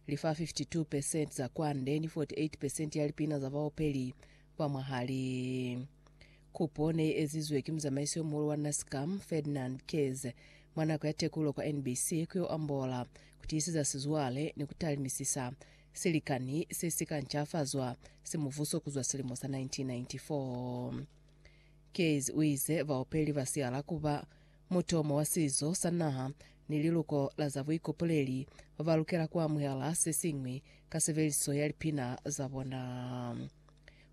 Li fa 52 percent za kwande ni 48 percent ya lipina za baopeli ba mwahali. Kupo ne i ezizwe ki muzamaiso yo muhulu wa Nascam, Ferdinand Keyes, mwa nako ya tekulo kwa NBC ku yo ambola, ku tiiseza sizwale ni ku talimisisa silikani se si ka ncafazwa si muvuso ku zwa silimo sa 1994. Keyes u ize baopeli ba siala ku ba mutomo wa sizo sa naha ni liluko la za buikopoleli, ba lukela ku amuhela se siñwi ka sebeliso ya lipina za bona.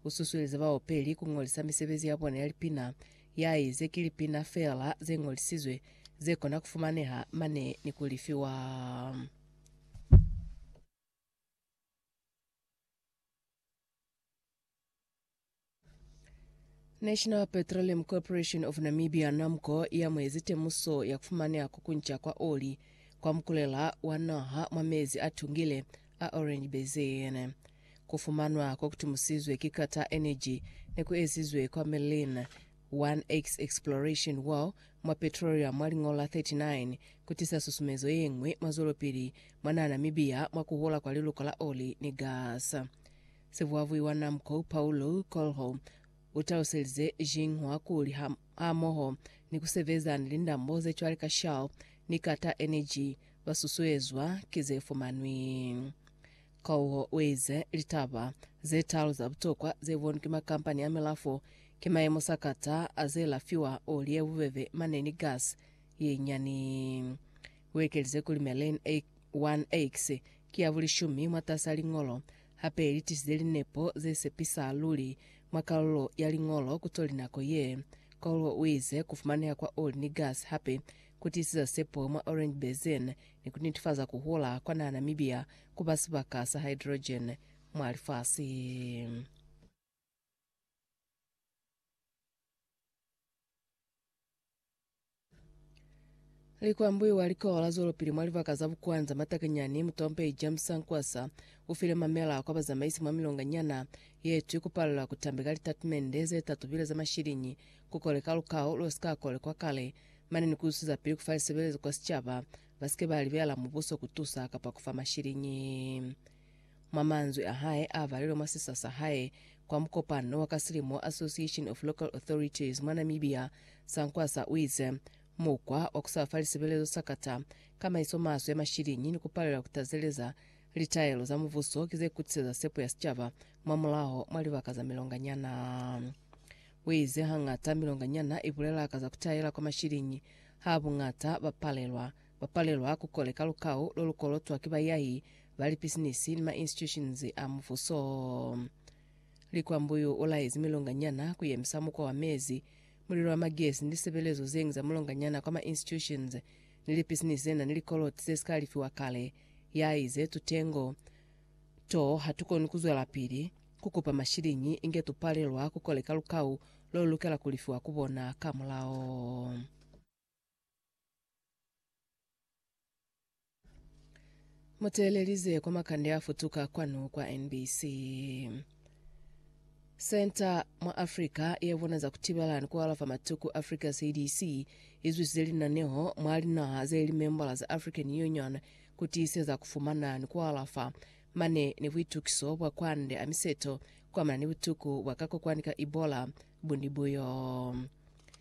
U susuelize baopeli ku ñolisa misebezi ya bona ya lipina ya i ze ki lipina feela ze ñolisizwe ze kona ku fumaneha mane ni ku lifiwa. National Petroleum Corporation of Namibia, NAMCO, yamuezi temuso ya kufumaneha kukunca kwa oli kwa mukulela wa naha mwa mezi a tungile a Orange Basin. Kufumanwa kokutumusizwe ki Qatar Energy nekuezizwe kwa Merlin 1X Exploration Well mwa Petroleum mwa lingo la 39 kutisa susumezo yeñwi mwa zwelopili mwa naha Namibia mwa kuhola kwa liluka la oli ni gas. Sivuavui wa Namco, Paulo Coelho, u taluselize Xinhua kuli ha hamoho ni ku sebeza ni lindambo ze cwale ka Shell ni Qatar Energy, ba susuezwa ki ze fumanwi. Coelho u ize, Litaba ze talu za butokwa ze bonwi ki makampani a milafo ki mayemo sa Qatar a ze lafiwa oli ye bubebe mane ni gas ye nyani. U ekelize kuli Meren 1X ki ya bulishumi mwatas'a liñolo Hape li tisize linepo ze sepisa luli mwa kalulo ya liñolo ku toli nako ye. Cole u ize, Ku fumaneha kwa oli ni gasi hape ku tisiza sepo mwa orange basin ni ku nitifaza ku hula kwa naha Namibia ku ba sibaka sa hydrogen mwa lifasi. Likwambuiwa likowa la zwelopili mwa libaka za Bukwanza Matakanyani mutompei James Sankwasa ufile mamela kwa bazamaisi mwa milonga nyana yetwi kupalelwa kutambi ka litatimende zetatubile za mashilinyi kukoleka lukao losika kolekwa kale mane ni kuzusiza pili kufa lisebelezo kwa sicaba basike balibela mubuso kutusa kapa kufa mashilinyi Mwa manzwi a hae a valelwe mwa sisa sa hae kwa mukopano wa ka silimo Association of Local Authorities mwa Namibia, Sankwasa u ize, Mukwa wa ku sa fa lisebelezo sa kata kamaiso maswe ya mashiliñi ni ku palela ku tazeleza litaelo za mubuso ki ze kutiseza sepo ya sicaba mwa mulaho mwa libaka za milonganyana. U ize, Hangata milonganyana i bulela ka za ku taela kwa mashiliñi, ha buñata ba palelwa Ba palelwa ku koleka lukau lo lu kolotwa ki bayahi ba lipisinisi ni ma-institutions a mubuso. Likwambuyu u laezi milonganyana ku yemisa mukwa wa mezi, mulilo wa magesi ni lisebelezo ze ñwi za mulonganyana kwa ma-institutions ni lipisinisi ze na ni likoloti ze si ka lifiwa kale. Ya ize, Tutengo to ha tu koni ku zwelapili ku kupa mashiliñi inge tu palelwa ku koleka lukau lo lu lukela ku lifiwa ku bona ka mulao. Muteelelize kwa makande afutuka kwanu kwa NBC. Senta mwa Africa yevona za kutibala ni kualafa matuku Africa CDC izwisize linaneho mwa linaha zeli membala za African Union kutiiseza kufumana ni kualafa mane ni buitukiso bwa kwande a miseto kuamana ni butuku bwa kakokwani ka Ebola buni buyo.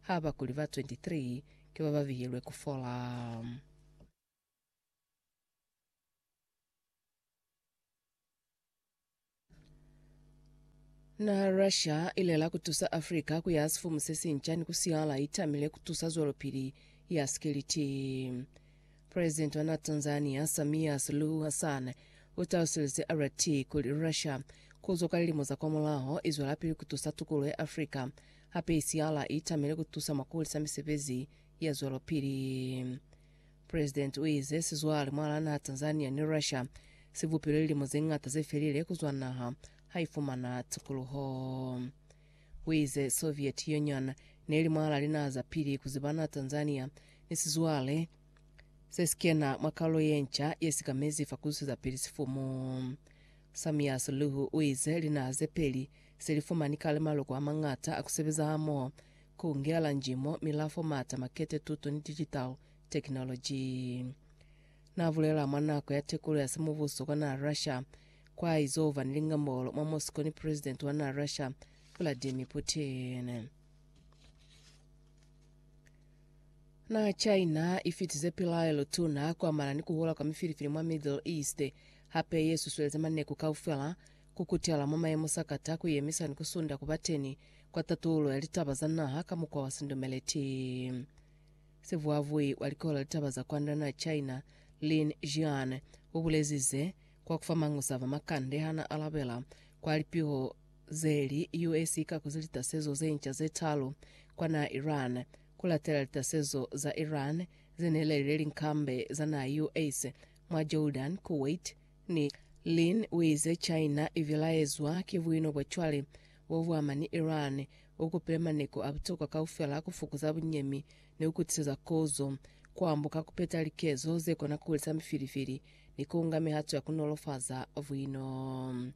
ha ba kuli ba 23 ki ba ba bihilwe ku fola. Naha ya Russia ilela kutusa Africa kuyaha sifumu sesinca ni kusihala itamile kutusa zwelopili ya sikiliti. President wa naha Tanzania, Samia Suluhu Hassan, utalusize RT kuli Russia kuzwa kwa lilimo za kwamulaho izwelapili kutusa tukuluho ya Africa Hape Isiala i tamile ku tusa mwa ku hulisa misebezi ya zwelopili. Presidenti u ize sizwale mwalaa naha Tanzania ni Russia si bupilwe lilimo ze ñata ze felile ku zwa naha ha i fumana tukuluho. U ize Soviet Union ne li mwalaa linaha za pili ku ziba naha Tanzania ni sizwale se si kena mwa kalulo ye nca ye si ka mezi fa ku zwiseza pili sifumu. Samia Suluhu u ize linaha ze peli Se li fumani kale maloko a mañata a ku sebeza hamoho, ku ngela njimo, milafo, maata, makete, tuto ni digital technology. Na bulela mwa nako ya tekulo ya simubuso kwa naha Russia, kwa izo ba ni lingambolo mwa Moscow ni President wa naha Russia, Vladimir Putin. Naha China i fitize pilaelo tuna ku amana ni ku hula kwa mifilifili mwa Middle East, hape ye susueleza maneku kaufela Ku kutela mwa mayemo sa kata ku yemisa ni ku sunda ku ba teni kwa tatulo ya litaba za naha ka mukwa wa sindumeleti. Sivuavui wa Likolo la Litaba za Kwand'a na China, Lin Jian, u bulezi ze kwa ku fa mañusa a ba makande ha n'a alabela kwa lipiho ze li US i ka kuzi litasezo ze nca ze talu kwa naha Iran ku latela litasezo za Iran ze ne lelile linkambe za naha US mwa Jordan, Kuwait, Ni Lin uize China ibilaezwa ki buino bwa cwale bo buama ni Iran, bo kupile maneko a butokwa kaufela ku fukuza bunyemi ni ku kutiseza kozo, ku ambuka ku peta likezo ze kona ku hulisa mifilifili ni ku nga mihato ya ku nolofaza buino.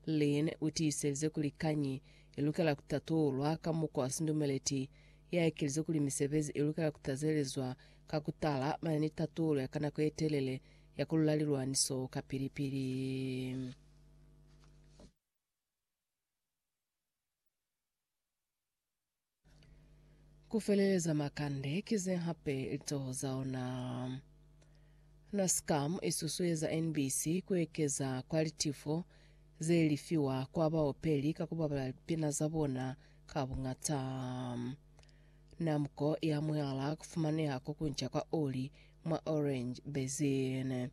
Lin utiiselize kuli kañi i lukela ku tatulwa ka mukwa wa sindumeleti. I aekelize kuli misebezi i lukela ku tazelezwa ka ku tala mane ni tatulo ya ka nako ye telele ya ku lula lilwaniso kapili-pili. Ku feleleza makande ki ze hape litoho za ona. Nascam i susueza NBC ku ekeza kwa litifo ze lifiwa kwa baopeli ka ku babala lipina za bona ka buñata. Namco i amuhela ku fumaneha ko kunca kwa oli mwa Orange Basin.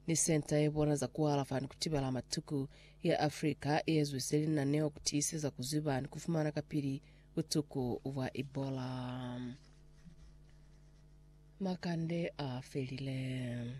Ni senta ye bona za kualafa ni kutibala matuku ya Africa iezwise linaneo kutiiseza kuziba ni kufumana kapili butuku bwa Ebola. Makande a felile.